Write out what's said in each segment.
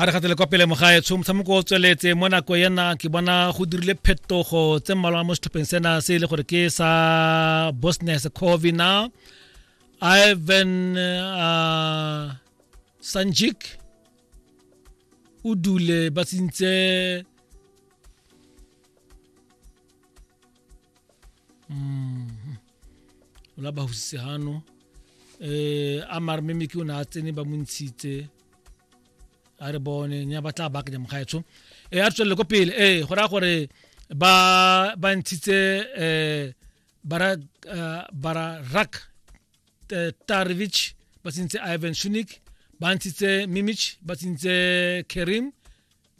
a re gatele kwa pele mogaetsho motshameko o tsweletse mo nako ena ke bona go dirile phetogo tse mmalwa mo setlhopheng sena se e le gore ke sa bosnia herzegovina ivan uh, sanjik o dule ba tsentse ola ba husitse hano eh a mare mme meke o ne a tsene ba mo ntshitse a re bone nya ba tla bakanya mokgaetsho eh a re tswelele ko pele eh go raya gore ba ba ntshitse eh bara eh, bara rak eh, Tarevich ba tsentse Ivan Shunik ba ntshitse Mimich ba tsentse Kerim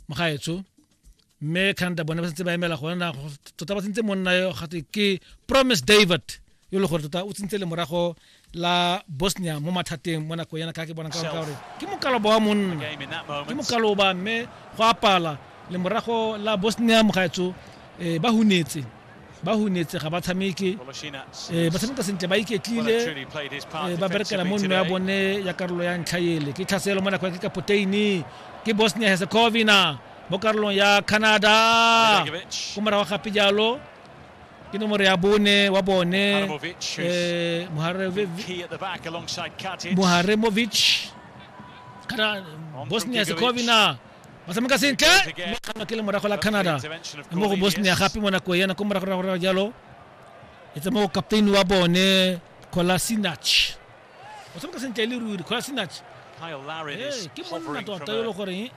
mogaetsho mme canada bone ba sentse ba emela gona na tota ba sentse monna yo gate ke promise david yo le gore tota o tsentse le morago la bosnia mo mathateng mo nakong yana ka ke bona ka gore ke mokaloba wa monna ke mokaloba mme go apala le morago la bosnia mogaetso um eh, ba hunetse ba hunetse ga ba tshameke eh, ba tshameka sentle ba iketlile eh, ba berekela mo nno ya bone ya karolo ya ntlha ele ke tlhaselo mo nako ya ke kapoteini ke bosnia herzegovina mo karolong ya canada ko morago gape jalo ke nomoro ya bone wa bone eh, moharemovic kana bosnia herzegovina ba tshameka sentle mme kgama ke le morago la canada mo go bosnia gape mo nako yana ko moragoragorago jalo e tsa mo captain wa bone colasinach o tshameka sentle e le ruri colasinach ke monna tota yo le goreng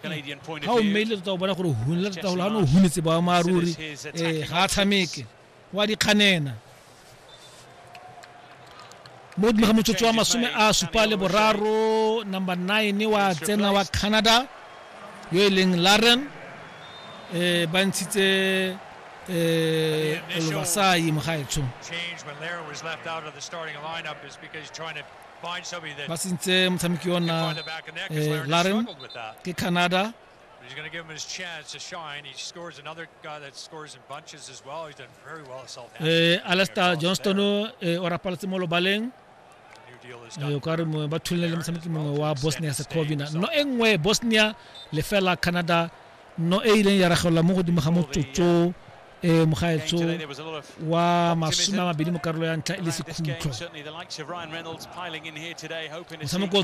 ga o mmeile tota o bona gore hunela tota golo ga ne o hunetse boammaaruri um ga a tshameke wa dikganena mo godimo ga motsotso wa masome a supa le boraro number nine wa tsena wa canada yo e leng laren um ba ntshitse um lobasai mo gaetsho ba sentse motshameki ona um laren ke canada He's going to give him his chance to shine. He scores another guy that scores in bunches as well. He's done very well Southampton. Eh, Alastair Johnston eh, o rapaletse mo lobaleng eh, o ka re ba thulile le motshameki mongwe wa bosnia herzegovina no e nngwe bosnia lefela canada no e ileng ya ragelelwa mo godimo ga motsotso um mogaetsho wa masome a mabedi mo karolo ya ntlha e le sekhutlo motshameko